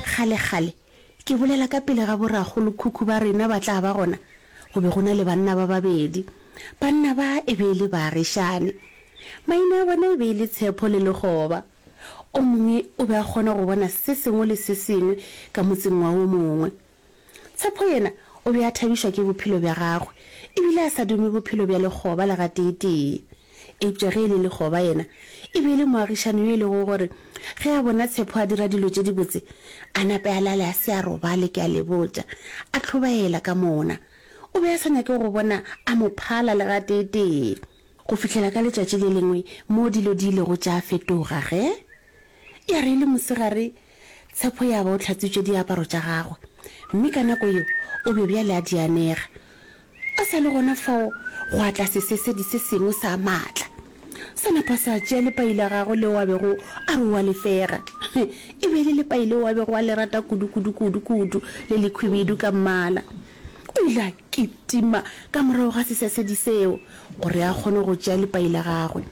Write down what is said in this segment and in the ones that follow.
Kgalekgale, ke bolela ka pele ga borakgolokhukhu ba rena ba tla ba gona, go be go na le banna ba babedi. Banna ba e be e le baagišane. Maina a bona e be e le Tshepho le Lekgoba. O mongwe o be a kgona go bona se sengwe le se sengwe ka motseng wa o mongwe. Tshepo yena o be a thabišwa ke bophelo bja gagwe e bile a sa dume bophelo bja lekgoba le gateetee. Eupša ge e le lekgoba yena e be e le moagišani yo e lego gore ge a bona Tshepo a dira dilo tše dibotse, a nape a lale a se a robale, ke a le botša, a tlhobaela ka mona. O be a sa nyake go bona a mo phala le gateetee. Go fihlela ka letšatši le lengwe moo dilo di ilego tša fetoga ge ya re e le mosegare, Tshepo ya ba o hlatswitše diaparo tša gagwe, mme ka nako yeo o be bjale a dianega. A sa le gona fao gwa tla sesesedi se sengwe sa matla. Sa napa sa tšea lepai la gagwe leo a bego a re o a le fega. E be e le lepai leo a bego a le rata kudu, kudu, kudu, kudu, le lekhwibidu ka mmala. O ile a kitima ka morago ga sesesedi seo gore a kgone go tšea lepai la gagwe.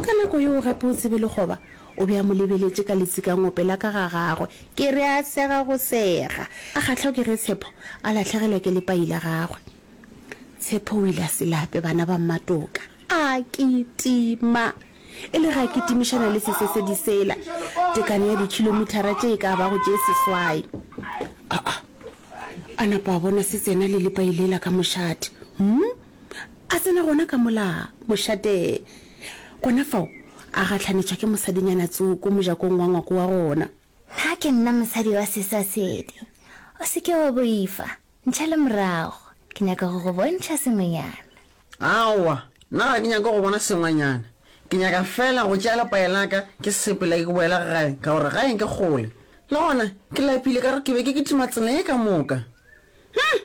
Ka nako yeo gape o tsebe lekgoba O be a mo lebeletše ka letsikangope la ka ga gagwe. Ke re a sega go sega. A kgahlwa ke ge Tshepo a lahlegelwa ke lepai la gagwe. Tshepo o ile a se lape, bana ba Mmatoka. A kitima. E le ge a kitimišana le sesesedi sela, tekano ya dikhilomithara tše e ka bago tše seswai. A-a. A napa a bona se tsena le lepai lela ka mošate. Hum! A tsena gona ka mola mošate. Gona fao a gatlhanetšwa ke mosadinyana tsoko mojakong wa ngwako wa gona. Na ke nna mosadi wa seswa sedi? O se ke wa boifa. Ntšhele morago. Ke nyaka go go bontšha sengwenyana. Aowa, nna ga ke nyake go bona sengwenyana. Ke nyaka feela go tšea lepae la ka ke sepela ke boela gae ka gore gae ke kgole. Le gona ke lapile ka gore ke be ke kitima tsela ye ka moka. Hum!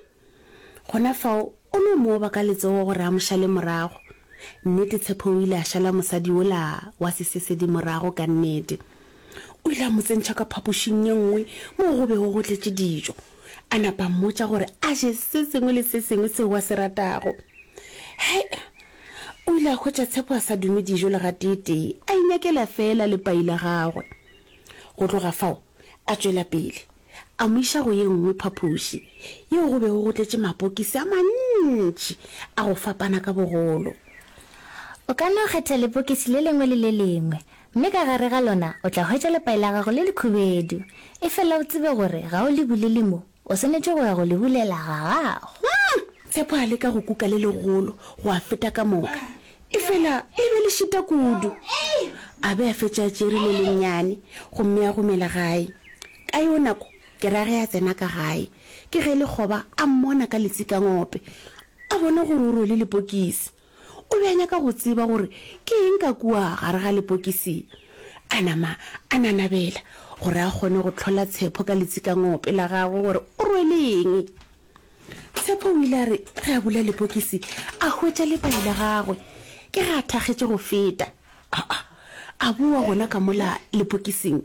Gona fao o no mo oba ka letsogo gore a mo šale morago. Nnete, Tshepo o ile a šala mosadi wola wa sesesedi morago ka nnete. O ile a mo tsentšha ka phapošing ye nngwe moo go bego go tletše dijo, a napa a mmotša gore a je se sengwe le se sengwe seo a se ratago. Hai! O ile a hwetša Tshepo a sa dume dijo le gateetee, a inyakela feela lepai la gagwe. Go tloga fao a tšwela pele. a mo iša go ye nngwe phapoši yeo go bego go tletše mapokisi a mantši a go fapana ka bogolo. O ka no kgetha lepokisi le lengwe le le lengwe, mme ka gare ga lona o tla hwetša lepai la gago le lekhubedu. Efela o tsebe gore ga o le bulele mo, o swanetše go ya go le bulela ga gago. Tshepo a leka go kuka le legolo go a feta ka moka, Efela le be le šita kudu. A be a fetša a tšere le lennyane, gomme a gomela gae. Ka yeo nako, ke ra ge a tsena ka gae, ke ge lekgoba a mmona ka letsikangope, a bona gore o rwele lepokisi. O be a nyaka go tseba gore ke eng ka kua gare ga lepokisi. A nama a nanabela gore a kgone go hlola Tshepho ka letsikangope la gagwe gore o rwele eng. Tshepo o ile a re ge a bula lepokisi a hwetša lepai la gagwe ke ge a thakgetše go feta. Aa, a boa gona ka mola lepokising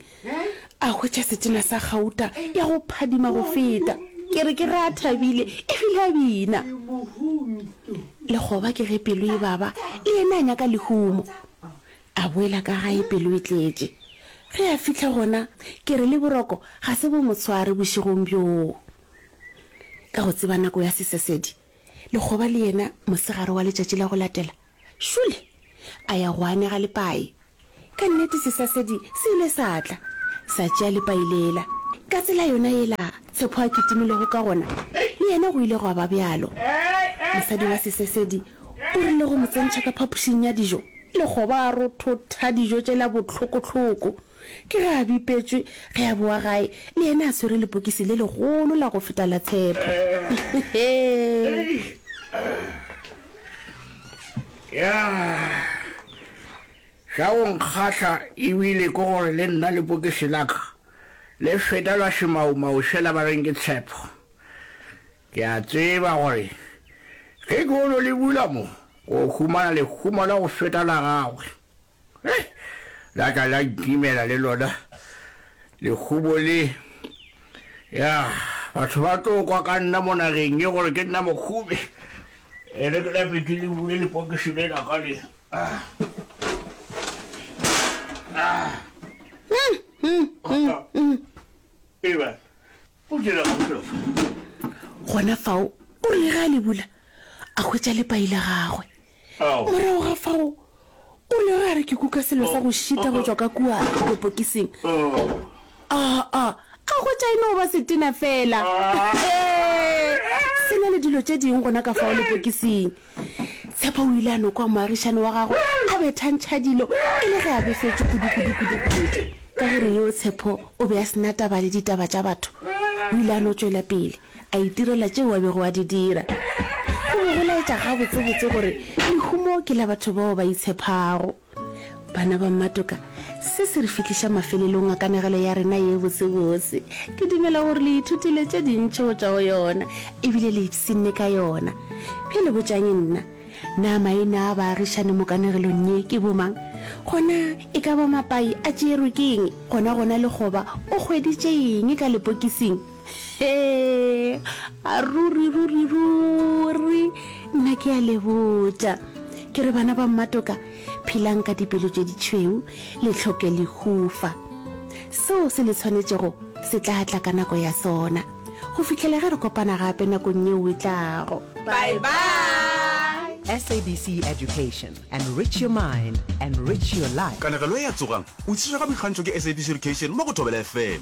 a hwetša setena sa gauta ya go phadima go feta. Ke re ke re a thabile ebile a bina. Lekgoba ke ge pelo e baba le yena a nyaka lehumo. A boela ka gae pelo e tletše. Ge a fihla gona ke re le boroko ga se bo motshware bošegong bjoo. Ka go tseba nako ya sesesedi, lekgoba le yena mosegare wa letšatši la go latela, šole a ya go anega lepai. Ka nnete sesesedi se ile sa tla, sa tšea lepai lela. Ka tsela yona yela Tshepo a kitimilego ka gona, le yena go ile gwa ba bjalo. Mosadi wa sesesedi o rile go mo tsentšha ka phapošing ya dijo, lekgoba a rothotha dijo tšela bohloko-hloko. Ke ge a bipetšwe ge a bowa gae, le yena a swere lepokisi le legolo la go feta la tshepo. Ya, sa go nkgahla e bile ke gore le nna lepokisi la ka le feta la semaumau sela ba reng ke tshepo. Ke a tseba gore ge ke ono le bula mo, ke o humana lehumo la go feta la gagwe. Hei! La tla la ntimela le lona lekhubo le. Ya, batho ba tlo kwa ka nna mo nageng ye gore ke nna mokhubi. Ere ke lape ke le bule lepokiši le la ka le. Ah. Ah. Mm, mm, mm, mm. Eba. O dira kgolo. Gona fao o rile ge a le bula, a hwetša lepai la gagwe. Ao. Morago ga fao o rile ge a re ke kuka selo sa go šita go tšwa ka kua dipokising, a, a, a hwetša e no ba setena feela. Ee, se na le dilo tše ding gona ka fao lepokising. Tshepo o ile a no kwa moagišani wa gagwe a bethantšha dilo e le ge a befetšwe kudukudukudukudu. Ka gore yo Tshepo o be a se na taba le ditaba tša batho, o ile a no tšwela pele a itirela tšeo a bego a di dira. O be go laetša gabotsebotse gore lehumo ke la batho bao ba itshephago. Bana ba mmatoka, se se re fihliša mafelelong a kanegelo ya rena ye botsebotse. Ke dumela gore le ithutile tše dintši go tšwa go yona ebile le ipshinne ka yona. Bjale botšang nna, Na maina a baagišani mo kanegelong ye ke bomang? Gona e ka ba mapai a tšeerwe ke eng? Gona-gona lekgoba o hweditše eng ka lepokising? Hee, ruri, ruri, ruri, nna ke a le botša. Ke re bana ba mmatoka, phelang ka dipelo tše ditšhweu, le tlhoke lehufa. Seo se le tshwanetšego se tla tla ka nako ya sona, go fihlela ge re kopana gape nakong yeo e tlago. Bye-bye! SABC Education, enrich your mind, enrich your life. Kanegelo e a tsogang! O tšhitšwe ga boikgantšho ke SABC Education mo go Thobela FM.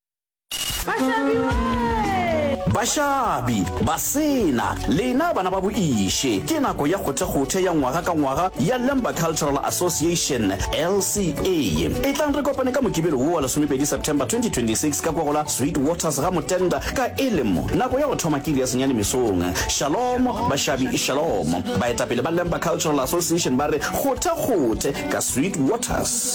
Bašabi, Basena, lena bana ba boiše, ke nako ya kgothekgothe ya ngwaga ka ngwaga ya Lemba Cultural Association, LCA. Etlang re kopane ka Mokibelo wo wa lesomepedi September 2026 ka kwa go la Sweet Waters ga Motenda ka elemo. Nako ya go thoma ke iri ya senyane mesong. Shalom, Bašabi, Shalom. Baetapele ba Lemba Cultural Association ba re kgothekgothe ka Sweet Waters.